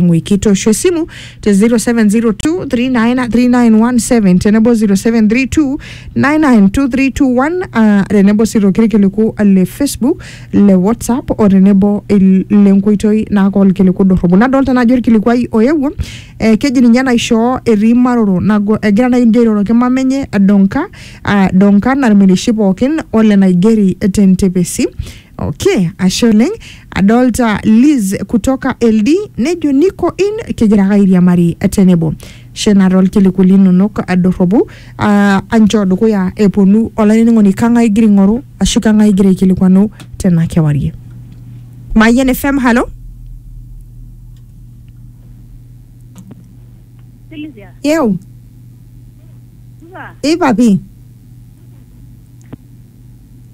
mwikito shwe simu te 0702393917 tenebo 0732992321 ah, tenebo sii torkiliku le facebook le whatsapp o tenebo il- le nkoitoi naaka olkiliku dorropu nadolta naajo olkilikuai oewuo eh, keji ninye naishoo etii maroro nago egira nai njo airoroki mama enye donka ah, donka narmirishi pookin ole naigeri tentepesi Okay, ashe oleng. Adolta Liz kutoka LD nejo niko in kigira ake airiamari tenebo. Shena tolkiliku linonok adorropu ah, anchoo dukuya eponu olainining'oni kang'ae igira aing'oru ashu kang'ae igira aikilikwanu tena kewarie. Mayian FM, halo? Silvia, Yeu, supa, ipapi.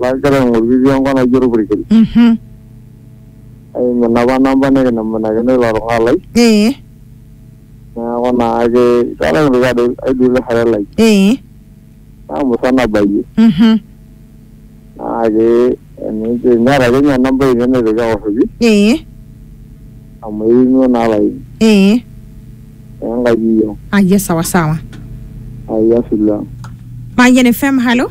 lagira aing'oru itii enkop naji orpurkel Mhm. aimu inapa namba nikinemunakino ilo tung'ani lai Ee. neeku naake itu aikata kintoki adol aidil orare lai Ee. namusa nabayie Mhm. naake enijo enyata ake ninye namba ainei naitoki aoshoki Ee. amu eimuo naa laini Ee. enkaji iyio Aye sawa sawa. ayia sila Mayian FM, halo.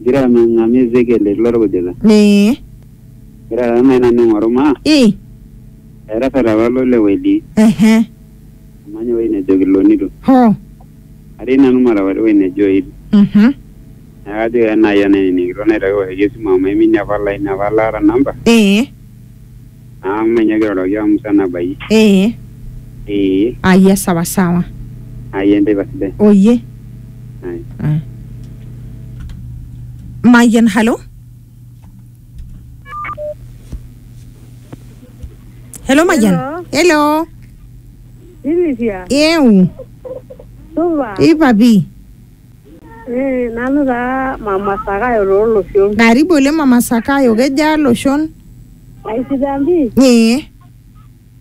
Igira ang'ang'amu Ezekiel etii lorkujita. Ee. Igira taa nai nanu aing'oru maa. Ii. Etasat apa ilo lewa etii. Ehe. Amany ewuei nejo Kilonito. Hoo. Atii nanu Marakwet ewuei nejo Oil. Mhm. Neeku kajoki ake nai enainining' kitok naitoki aoshoki esimu amu aiminie apa olaini apa laata namba. Ee. Amu menye kiroroki amu musan abayie. ee Ee. aya sawa sawa Ai enteipa sidai. oye Ai. Ah. mayian halo helo mayian helo Silvia, eu supa. ipapi Eh, nanu taa mama Sakayo tooloshon. Karibu oleng mama Sakayo, kejaa loshon? Aisidan pii, Ee,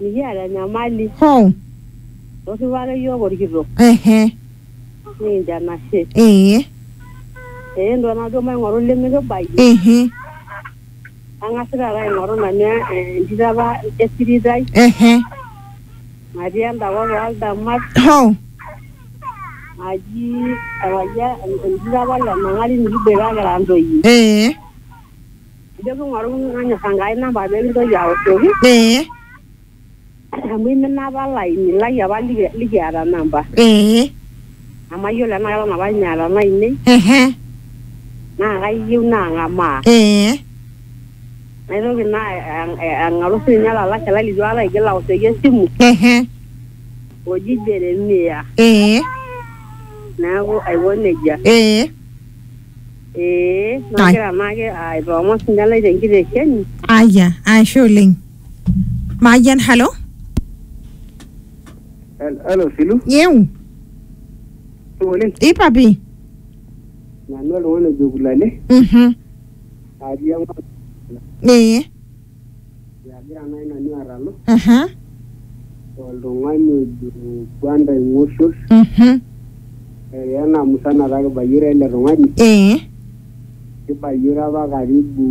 mikiata enyamali. hoo, Torripo ake yiok olkitok. ehe, Nikincho enashe. ee, Eh, entuaa najo maing'oru limikibaiki. ehe, Ang'as taata aing'oru nanu entito apa esirit ai. ehe. Natii enda kop ooldamat Hoo. naji ewalia enjito apa le Mang'ati nikiboita kira ntoyie. Ee. Nijo king'oru nanyor Enkai namba pee kintoki aoshoki Ee. amu imina apa olaini lai apa liki- likiata namba. Ee. Nemayiolo enaa keton apa ninye eeta olainei Ehe. naa kayieu naang'amaa. Ee. Naitoki naa ang- eh, ang'aru sininye olalashe lai litu aikata aigil aoshoki esimu ehe oji Jeremia. ee Neeku aiko nejia. ee Ee, nagira naake aitoomon sininye lai tenkitesheni. aya ashe oleng mayian halo Hello, Silu. yeu Oleng. ipapi Nanu oltung'ani ojo Kulale. mhm atii enkop ee agira naaji nanu atalu aha oltung'ani ojo Gwanda Ing'oshol mhm eya ena musana taa kibayioro ele tung'ani ee kibayioro apa karibu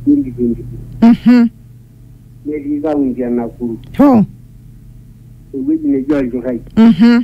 2022 mhm netii kaunti e Nakuru hoo ewueji neji Olchurrai mhm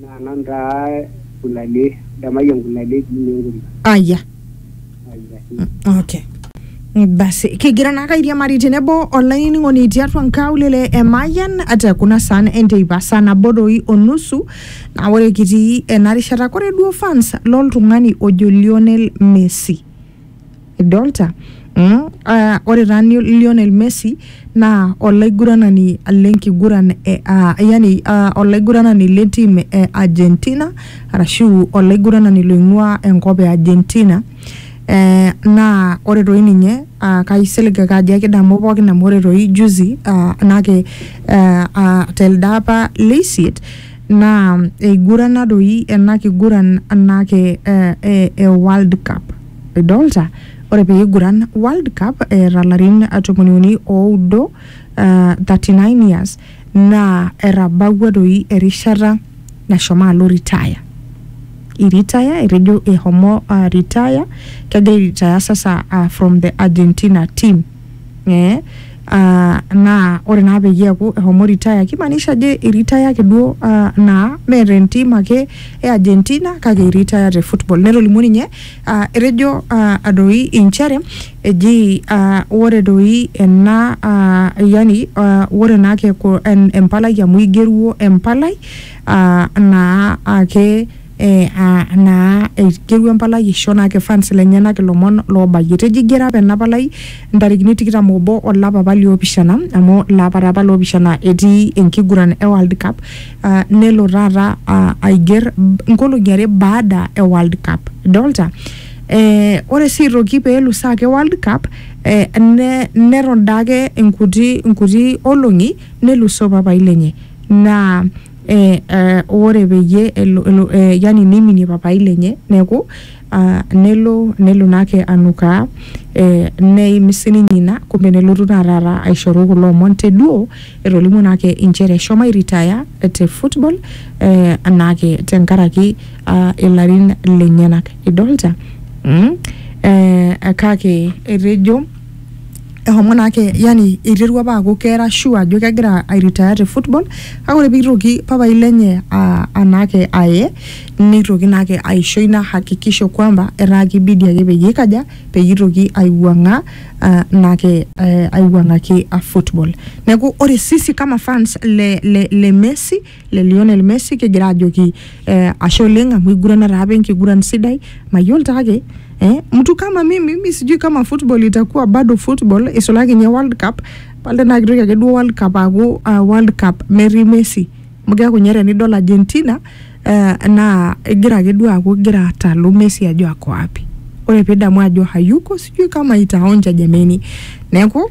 Naa nanu taa Gulalie, Damayian Gulalie eji ninye Enkuria. Aya. Aya sii. Okay. Basi, kigira naake airiamari tenebo olainining'oni tiatua nkaulele e Mayian te kuna saan enteipa saa nabo doi o nusu naa ore kitii ena rishata kore duo fans loltung'ani ojo Lionel Messi. idolta mm? uh, ore taa ni- Lionel Messi naa olaiguranani lenkiguran e, uh, yani uh, olaiguranani le tim e Argentina arashu olaiguranani loing'ua enkop e Argentina eh, naa ore toi ninye uh, kaisilig ake ajo ekidamu pookin amu ore toi juzi uh, nake uh, uh, telde apa leisiet naa eigurana doi ena kiguran anake eh, eh, e World Cup. Idolta? Ore pee iguran World Cup eeta larin tomoni uni oudo uh, 39 years naa etabawua doi erishata nashomo alo retire. Iritaya etejo ehomo uh, retire kegira aitaya sasa uh, from the Argentina team. eh, ah, naa ore naa peyie eaku ehomo retire kimaanisha ajo iritaya ake duo ah, naa mee te ntim ake e Argentina kake iritaya te football netolimuo ninye ah, etejo ah, doi inchere eji ah, ore doi ena ah, yani ah, ore naa keku en- empalai amu igeruo empalai ah, naa ake eh, ah, naa eiterua empalai aisho naa kifans lenyenak ilomon loobayie tejo igero apa ena palai ntarikini tikitam obo olapa apa liopishana amu laapa apa loopishana etii enkiguran e World Cup ah, nelo taata ah, aiger nkolong'i are baada e World Cup idolta eh, ore sii aitoki peelo saa ake World Cup eh, ne, neton daake inkuti, inkuti olong'i nelusoo papai lenye naa eh, eh, ore peyie elo, elo eh, yani neiminie papai lenye neeku ah, nelo nelo naake anukaa eh, neim sininye ina kumbe nelotu naa taata aishoru kulo omon te duo etolimuo naake inchere eshomo airitaya te football eh, naake tenkaraki ah, ilarin lenyenak idolta mm? eh, kake etejo ehomo naake yani eiterua apa aaku keera sure ajo kegira airitaya te football kake ore peitoki papai lenye a- anaake aye neitoki naake aisho ina hakikisho kwamba etaa kibidi ake peyie ikaja peyie itoki aiwuang'aa ah, naake eh, aiwuang'aki ah, football neeku ore sisi kama fans le, le, le Messi le Lionel Messi kigira ajoki eh, ashe oleng amu igurana taa apa enkiguran sidai mayiolo taa ake eh, mtu kama mimi mi sijui kama football itakuwa bado football isulaki nye World Cup pale naa kitoki ake duo World Cup aaku uh, World Cup metii Messi amu keeku nye tenidol Argentina eh, naa igira ake duo aaku igira atalu Messi ajo ako wapi ore pidamu ajo hayuko sijui kama itaonja jameni neeku